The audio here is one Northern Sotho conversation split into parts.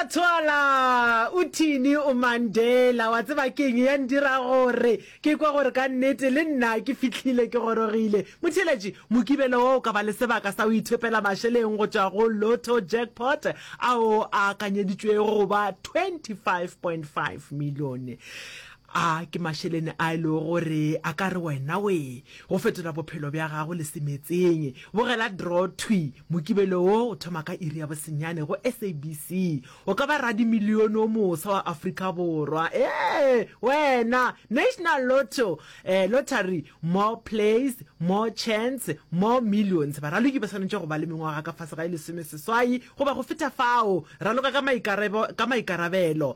tswala o thini o mandela wa tseba keng ya ndira gore ke kwa gore ka nnete le nna ke fitlhile ke gorogile motheletši mokibelo wo o ka ba le sebaka sa o ithepela mašeleng go tšwa go lotto jackpot ao a akanyeditšwego go ba 25.5 milione A ke mašelene a e lego gore a ka re wena we go fetola bophelo bja gago le se metseng? Bogela Draw Thwi! Mokibelo wo o thoma ka iri ya bosenyane go SABC. O ka ba radimilione o moswa wa Afrika Borwa. Ee, wena! National Lotto eh, Lottery, More plays, more chance, more millions. Baraloki ba swanetše go ba le mengwaga ka fase ga e lesomeseswai goba go feta fao. Raloka ka maikarabelo.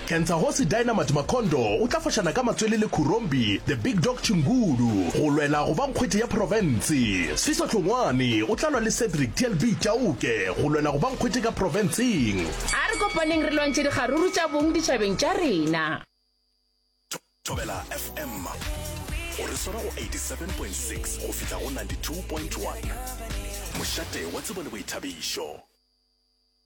Kentsagosi Dynamite Makhondo o tla fošana ka matswele le Khurombi The Big Dog Chingulu go lwela go ba nkgwete ya profense. Sfiso Hlongwane o tla lwa le Cedric TLB Chauke go lwela go ba nkgwete ka profenseng. A re kopaneng re lwantšhe dikgaruru tša bong ditšhabeng tša rena. Thobela FM o re swara go 87.6 go fihla go 92.1, mošate wa tsebo le boithabišo.